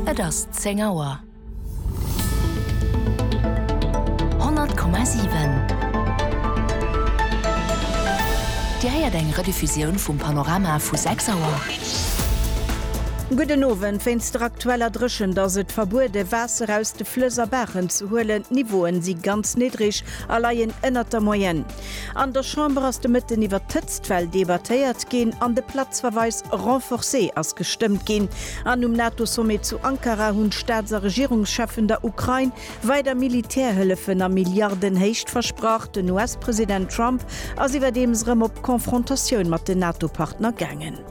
Et ass 10 Auer. 100,7 Dir héiert eng Rediffusioun vum Panorama vu 6 Auer. Gudden Owend. Wéinst der aktueller Dréchent ass et verbuede Waasser aus de Flëss a Baachen ze huelen. D'Niveaue si ganz niddreg a leien ënnert der Moyenne. An der Chamber ass de Mëtten iwwert d'Hëtztwell debattéiert ginn an de Platzverweis renforcé ass gestëmmt ginn. An um NATO-Sommet zu Ankara hunn d'Staats a Regierungscheffen der Ukrain weider Militärhëllefen a Milliardenhéicht versprach. Den US-President Trump ass iwwerdeems erëm op Confrontatioun mat den NATO-Partner gaangen.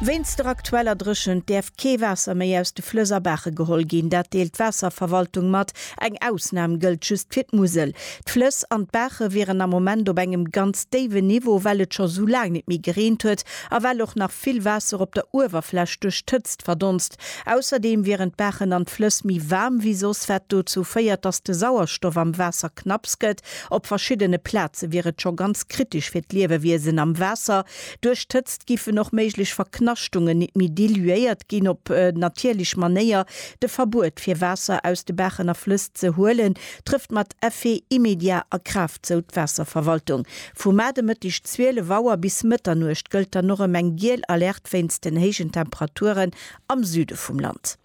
Wéinst der aktueller Dréchent däerf kee Waasser méi aus de Flëss a Baache geholl ginn. Dat deelt d'Waasserverwaltung mat. Eng Ausnam gëllt just fir d'Musel. D'Flëss an d'Baache wieren am Moment op engem ganz déiwen Niveau, well et scho esou laang net méi gereent huet a well och nach vill Waasser op der Uewerfläch duerch d'Hëtzt verdonst. Ausserdeem wieren d'Baachen an d'Flëss méi waarm wéi soss, wat dozou féiert, datt de Sauerstoff am Waasser knapps gëtt Op verschiddene Plaze wier et scho ganz kritesch fir d'Liewewiesen am Waasser. Duerch d'Hëtzt giffen och méiglech Verknaschtungen nit méi diluéiert ginn. Op natierlech Manéier de Verbuet fir Waasser aus de Baachen a Flëss ze huelen, trëfft mat Effet immédiat a Kraaft, sou d'Waasserverwaltung. Vu Maart e Mëtteg 12 Auer bis Mëtternuecht gëllt dann och erëm eng giel Alerte wéinst den héijen Temperaturen am Süde vum Land.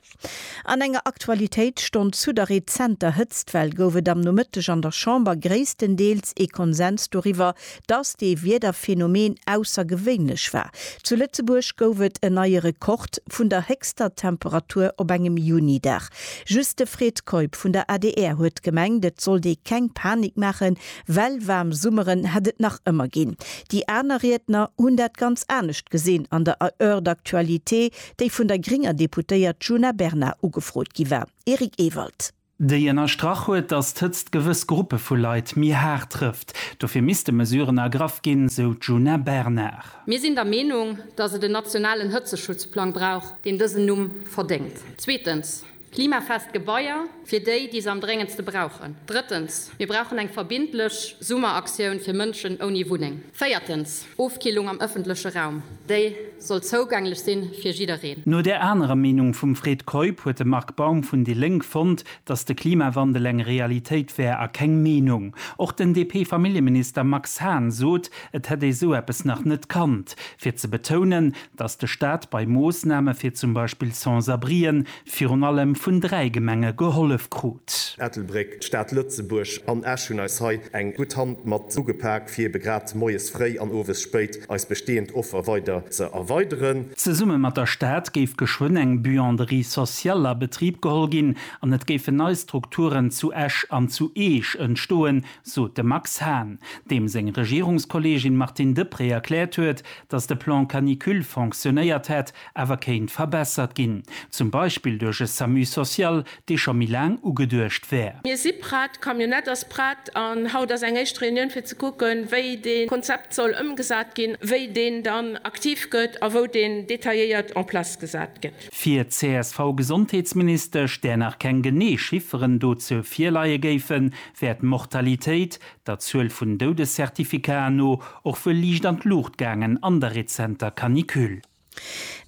An enger Aktualitéitsstonn zu der rezenter Hëtztwell gouf et am Nomëtteg an der Chamber gréisstendeels ee Konsens doriwwer, datt dee Wiederphänomen aussergewéinlech war. Zu Lëtzebuerg gouf et en neie Rekord vun der héchster Temperatur op engem Juni-Dag. Just de Fred Keup vun der adr huet gemengt, et sollt ee keng Panik maachen, well waarm Summeren hätt et nach ëmmer ginn. Déi aner Riedner hunn dat ganz anescht gesinn an der Heure d'actualité. déi vun der grénger Deputéiert Djuna Bernard ugefrot gi war. Eric Ewald. Déi ënnerstrach huet, datt d'Hëtzt gewëss Gruppe vu Leit méi haart trëfft. Dofir misste Mesuren ergraff ginn, sou d'Djuna Bernard. Mir sinn der Meenung, datt et en nationalen Hëtzeschutzplang brauch, deen dësen Numm verdéngt. Zweetens. Klimafest Gebaier fir déi, déi se am dréngendste brauchen. Drëttens, mir brauchen eng verbindlech Summeraktioun fir Mënschen ouni Wunneng. Véiertens, Ofkillung am ëffentleche Raum, déi soll zougänglech sinn fir jiddereen. No där anerer Meenung vum Fred Keup huet de Marc Baum vun déi Lénk fonnt, datt de Klimawandel eng Realitéit wär a keng Meenung. Och den DP-Familljeminister Max Hahn sot, et hätt ee sou eppes nach net kannt, fir ze betounen, dass de Staat bei Moossname fir zum Beispill Sans-abrien virun allem vun dräi Gemenge gehollef krut. Ettelbréck, d'Stad Lëtzebuerg an Esch hunn eis hei eng gutt Hand mat ugepak, fir ebe grad moies fréi an owes spéit eis bestehend Offer weider ze erweideren. Zesumme mat der Stad géif geschwënn eng Buanderie sociale a Betrib geholl ginn an et géifen nei Strukturen zu Esch an zu Eech entstoen, sot de Max Hahn, deem seng Regierungskolleegin Martine Deprez erkläert huet, datt de Plan canicule fonctionnéiert hätt, awer kéint verbessert ginn, zum Beispill duerch e Samu social, dee scho méi laang ugeduecht wär. Mir si prett, d'Camionnette ass prett an haut ass eng éischt Reunioun fir ze kucken, wéi dee Konzept soll ëmgesat ginn, wéi deen dann aktiv gëtt a wou deen detailléiert en place gesat gëtt. Fir d'CSV-Gesondheetsministesch, där nach keng genee Chifferen dozou virleie géifen, wär d'Mortalitéit, der Zuel vun Doudescertificaten no, och wuel liicht an d'Luucht gaangen an der rezenter Canicule.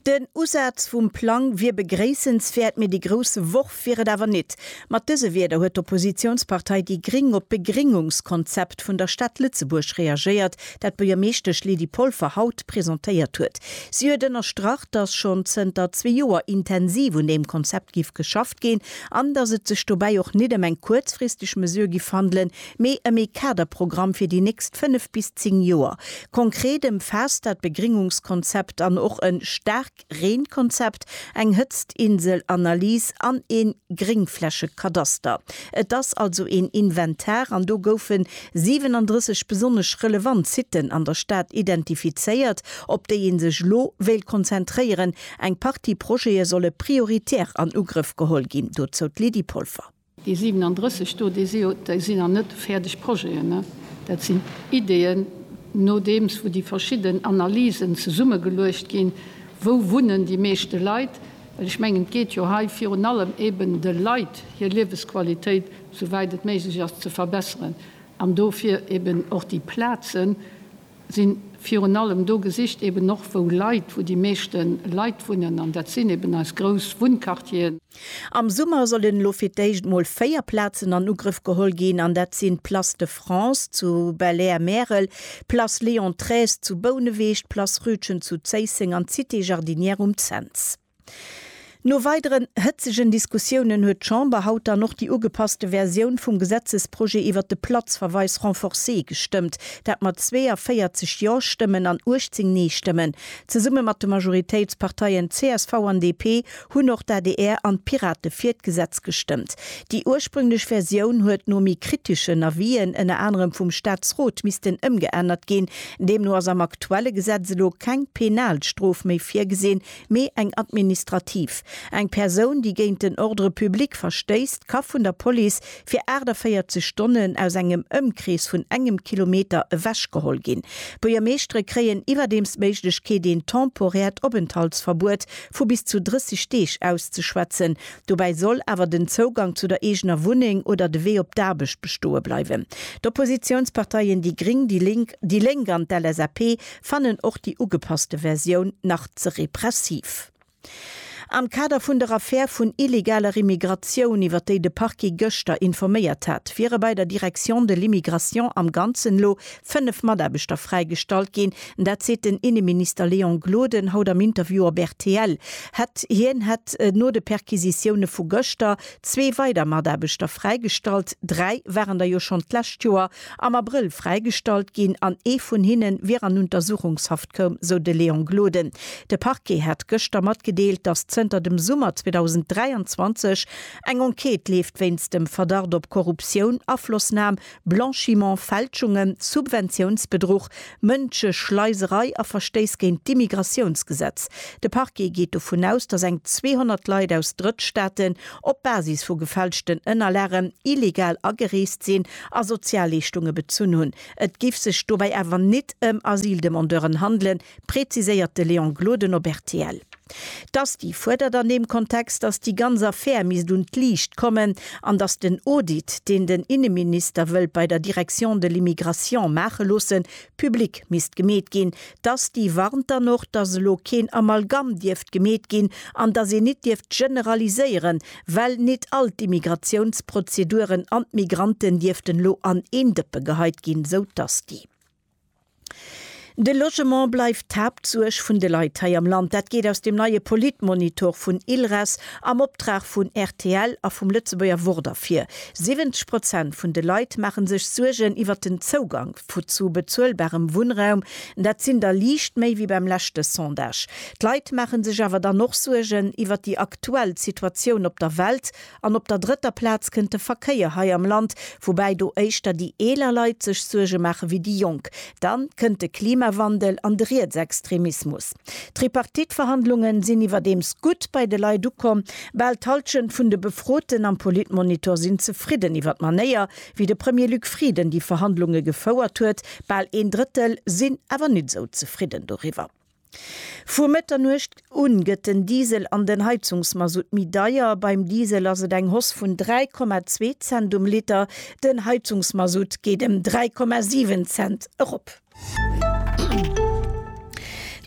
Den Usaz vum Plang wier begréissenswäert, mee de grousse Worf wier et awer nit. Mat dëse Wierder huet d'Oppositiounspartei déi Gring op d'Begringungskonzept vun der Stad Lëtzebuerg reagéiert, dat d'Buergermeeschtesch Lydie Polfer haut presentéiert huet. Si huet ënnerstrach, datt schonn zënter zwee Joer intensiv un deem Konzept giff geschafft. gestoppt ginn an datt et sech dobäi och nit ëm eng kuerzfristeg Mesure giff handelen, mee ëm ee Kaderprogramm fir déi nächst fënnef bis zéng Joer. Konkret ëmfaasst dat Begringungskonzept an och e Staarkreenkonzept, eng Hëtztinselanalys an ee Gréngflächekadaster. Et ass also een Inventar an do goufe 37 besonnesch relevant Siten an der Stad identifizéiert, op déi ee sech elo wéilt konzentréieren, Eng Partie Projete solle prioritär an Ugrëff geholl ginn, dozou d'Lydie Polfer. Déi 37 do, déi sinn nach net fäerdeg Projeten. Dat sinn Ideeën, nodeems wou déi verschidden Analysen zesummegeluecht ginn, Wou wunnen déi meeschte Leit? Well ech mengen, et geet jo hei virun allem eben, de Leit hir Liewesqualitéit, souwäit et méiglech ass, ze verbesseren an dofir eben och déi Plazen, sinn virun allem do gesicht, eben och wou Leit, wou déi meeschte Leit wunnen, an dat sinn eben eis grouss Wunnquartieren. Am Summer sollen elo fir d'éischt emol véier Plazen an Ugrëff geholl ginn, an dat sinn d'Place de France zu Belair-Märel, d'Place Léon Treize zu Bouneweg, d'Place Rütgen zu Zéisseng an d'Cité Jardinière um Cents. No weideren hëtzegen Diskussiounen huet d'Chamber haut dann och déi ugepasste Versioun vum Gesetzesprojet iwwert de Platzverweis renforcé gestëmmt, dat mat 42 Jo-Stëmmen an 18 Nee-Stëmmen. Zesumme mat de Majoritéitsparteien csv an DP hunn och d'ADR an d'Pirate fir d'Gesetz gestëmmt. Déi ursprünglech Versioun huet no méi kriteschen Avisen, ënner anerem vum Staatsrot, missten ëmgeännert ginn. Deemno ass am aktuelle Gesetz elo keng penal Strof méi virgesinn, Mee eng administrativ. Eng Persoun, déi géint den Ordre public verstéisst, ka vun der Police fir 48 Stonnen aus engem Ëmkrees vun engem Kilometer ewechgeholl ginn. D'Buergermeeschtere kréien iwwerdeems d'Méiglechkeet, een temporäert Openthaltsverbuet vu bis zu 30 Deeg auszeschwätzen. Dobäi soll awer den Zougang zu der eegener Wunneng oder de Wee op d'Aarbecht bestoe bleiwen. D'Oppositiounsparteien déi Gring, déi Lénk, déi Lénk an d'LSAP fannen och déi ugepasste Versioun nach ze repressiv. Am Kader vun der Affär vun illegaler Immigratioun, iwwer déi de Parquet gëschter informéiert hat, wiere bei der Direction de l'immigration am Ganzen elo fënnef Mataarbechter fräigestallt ginn. Dat seet den Inneminister Léon Gloden haut am Interview op rtl. Hätt hien hätt no de Perquisitioune vu gëschter zwee weider Mataarbechter fräigestallt. Dräi waren der jo schonn d'lescht Joer am Abrëll fräigestallt ginn an ee vun hinne wier an Untersuchungshaft koum, sou de Léon Gloden. De Parquet hat gëschter matgedeelt, datt zënter dem Summer 2023 eng Enquête leeft wéinst dem Verdacht op Korruptioun, Aflossnam, Blanchiment, Fälschungen, Subventiounsbedruch, Mënscheschleiserei a Verstéiss géint d'Immigratiounsgesetz. De Parquet geet dovun aus, datt eng 200 Leit aus Drëttstaaten op Basis vu gefälschten Ënnerlagen illegal agereest sinn a Sozialleeschtunge bezunn hunn. Et giff sech dobäi awer nit ëm Asyldemandeuren handelen, präziséiert de Léon Gloden op rtl. D'Asti fuerdert an deem Kontext, datt déi ganz Affär misst un d'Liicht kommen an datt den Audit, deen den Inneminister wëllt bei der Direction de l'Immigration maache loossen, public misst gemeet ginn. D'Asti warnt dann och, datt elo keen Amalgamm dierft gemeet ginn an datt een nit dierft generaliséieren, Well nit all d'Immigratiounsprozeduren an d'Migranten dierften elo an een Dëppe geheit ginn, sou d'Asti. De Logement bleift d'Haaptsuerg vun de Leit hei am Land. Dat geet aus dem neie Politmonitor vun ILRES am Optrag vun rtl a vum Lëtzebuerger Wort ervir. 70 Prozent vun de Leit maache sech Suergen iwwert den Zougang zu bezuelbarem Wunnraum. Dat sinn der liicht méi wéi beim leschte Sondage. D'Leit maache sech awer dann och Suergen iwwert déi aktuell Situatioun op der Welt an op der drëtter Plaz kënnt de Verkéier hei am Land, woubäi do éischter déi eeler Leit sech Suerge maache wéi déi Jonk. Dann kënnt de Klimawandel an de Rietsextremismus. D'Tripartite-Verhandlunge sinn iwwerdeems gutt bei de Leit ukomm. Bal d'Hallschent vun de Befroten am Politmonitor sinn zefridden iwwer d'Manéier, wéi de Premier Luc Frieden déi Verhandlunge gefouert huet. Bal een Drëttel sinn awer nit esou zefridden doriwwer. Vu Mëtternuecht un gëtt den Diesel an den Heizungsmasutt méi deier. Beim Diesel ass et eng Hoss vun 3,2 Cent um Liter, den Heizungsmasutt geet em 3,7 Cent erop.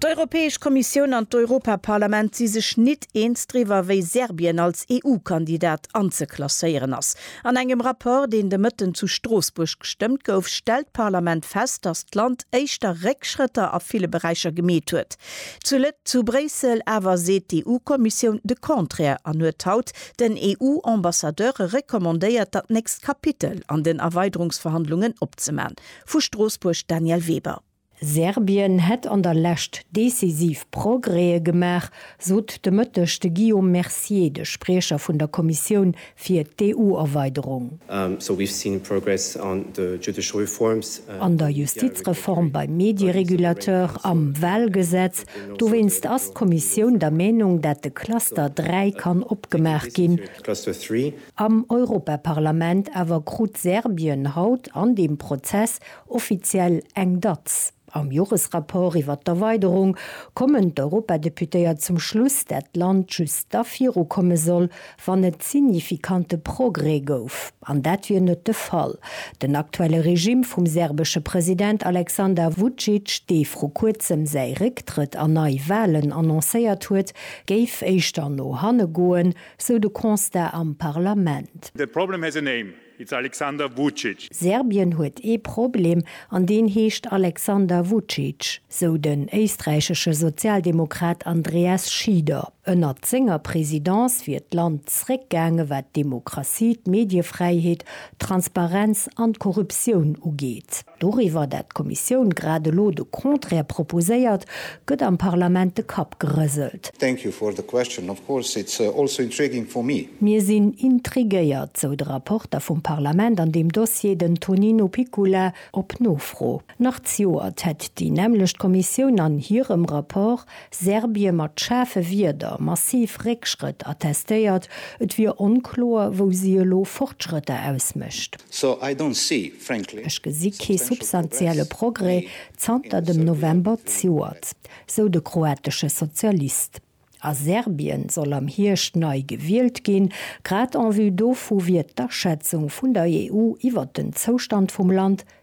D'Europäesch Kommissioun an d'Europaparlament si sech nit eens driwwer, wéi Serbien als EU-Kandidat anzeklasséieren ass. An engem Rapport, deen de Mëtten zu Stroossbuerg gestëmmt gouf, stellt d'Parlament fest, datt d'Land éischter Réckschrëtter a ville Beräicher gemeet huet. Zu zu Bréissel awer seet d'EU-Kommissioun de Contraire an huet haut den EU-Ambassadeure recommandéiert, dat nächst Kapitel an den Erweiderungsverhandlungen opzeman. Vu Stroossbuerg Danièle Weber. Serbien hätt an der Lescht decisiv Progrèse gemaach, sot de Mëtteg de Guillaume Mercier, de Spriecher vun der Kommissioun fir d'EU-Erweiderung. An der Justizreform, beim Medierégulateur, am Wahlgesetz. Dowéinst ass d'Kommissioun der Meenung, dat de Cluster 3 kann opgemaach ginn. Am Europaparlament awer krut Serbien haut an deem Prozess Offiziell eng Datz. Am Joresrapport iwwer d'Erweiderung kommen d'Europadeputéiert zum Schluss, dat d'Land just da viru komme soll, wann et signifikante Progrès gouf. An dat wier net de Fall. Den aktuelle Regime vum serbesche President Aleksandar Vucic, dee vru kuerzem säi Récktrëtt a nei Walen annoncéiert huet, géif éischter no hanne goen, sou de Constat am Parlament. The problem has a name. It's Alexander Vucic. Serbien huet ee Problem, an deen heescht Alexander Vucic, sou den éisträichesche Sozialdemokrat Andreas Schieder. Ënnert senger Presidence wier d'Land zréckgaange wat d'Demokratie, d'Mediefräiheet, d'Transparenz an d'Korruptioun ugeet. Doriwwer, dat d'Kommissioun grad elo de Contraire proposéiert, gëtt am Parlament de Kapp gerëselt. Thank you for the question. Of course it's also intriguing for me. Mir sinn intriguéiert, sou de Rapporter vum Parlament an deem Dossier, den Tonino Picula, op Nofro. Nach d'Joert hätt déi nämmlecht Kommissioun an hirem Rapport Serbie mat schaarfe Wierder massiv Réckschrëtt attestéiert, et wier onkloer, wou si elo Fortschrëtter ausmécht. Ech gesi kee substantielle Progrès zanter dem November d'Joert, sou de kroatesche Sozialist. A Serbien soll am Hierscht nei gewielt ginn. Grad en vue dovu wier d'Aschätzung vun der EU iwwert den Zoustand vum Land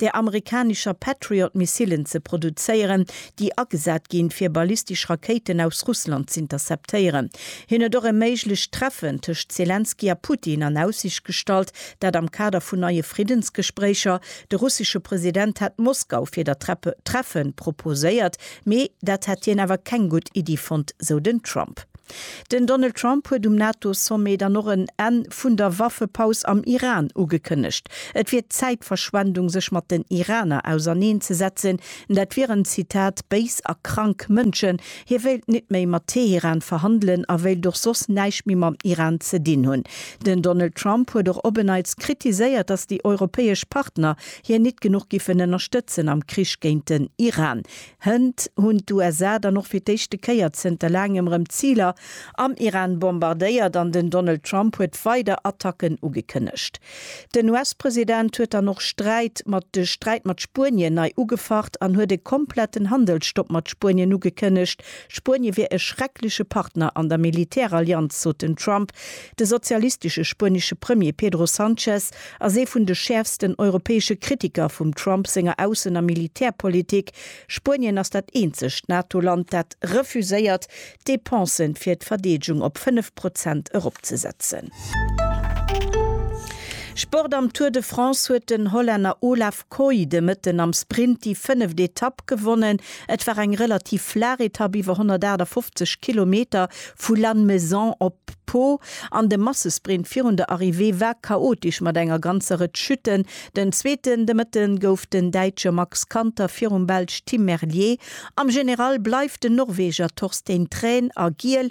der amerikanischer Patriot-Missilen ze produzéieren, déi agesat ginn, fir ballistesch Rakéiten aus Russland z'interceptéieren. Hien huet och e méiglecht Treffen tëscht Selenskyj a Putin an Aussicht gestallt, dat am Kader vun neie Friddensgespréicher. De russesche President hat Moskau fir dat Treffen proposéiert, mee dat hätt hien awer keng gutt Iddi fonnt, sou den Trump. Den Donald Trump huet um NATO-Sommet dann och en Enn vun der Waffepaus am Iran ugekënnegt. Et wier Zäitverschwendung sech mat den Iraner auserneen ze setzen, dat wieren, Zitat, béis a krank Mënschen. Hie wéilt nit méi mat Teheran verhandelen a wéilt och soss näischt méi mam Iran ze dinn hunn. Den Donald Trump huet och op en Neits kritiséiert, datt déi europäesch Partner hien nit genuch giffen ënnerstëtzen am Krich géint den Iran. Hënt hunn d'USA dann och fir d'éischte Kéier zënter laangem rëm Ziler am Iran bombardéiert an den Donald Trump huet weider Attacken ugekënnegt. Den US-President huet dann och Sträit mat de Sträit mat Spuenien nei ugefacht an huet e kompletten Handelsstopp mat Spuenien ugekënnegt. Spuenie wier e schreckleche Partner an der Militärallianz, sot den Trump. De sozialistesche spuenesche Premier Pedro Sanchez ass ee vun de schäerfsten europäesche Kritiker vum Trump senger Aussen a Militärpolitik. Spuenien ass dat eenzegt NATO-Land, dat refuséiert, d'Depensë fir d'Verdeedegung op 5 Prozent eropzesetzen. Sport Am Tour de France huet den Hollänner Olaf. Kooi de Mëtten am Sprint déi fënneft Etapp gewonnen. Et war eng relativ flaach Etapp iwwer 158 Kilometer vu Lannemezan op Pau an de Massesprint virun der Arrivée war chaotesch mat enger ganzer Rëtsch Chuten. Den Zweeten de Mëtte gouf den Däitsche Max Kanter virum Belsch Tim Merlier. Am General bleift den Norweger Torstein Thrane a Giel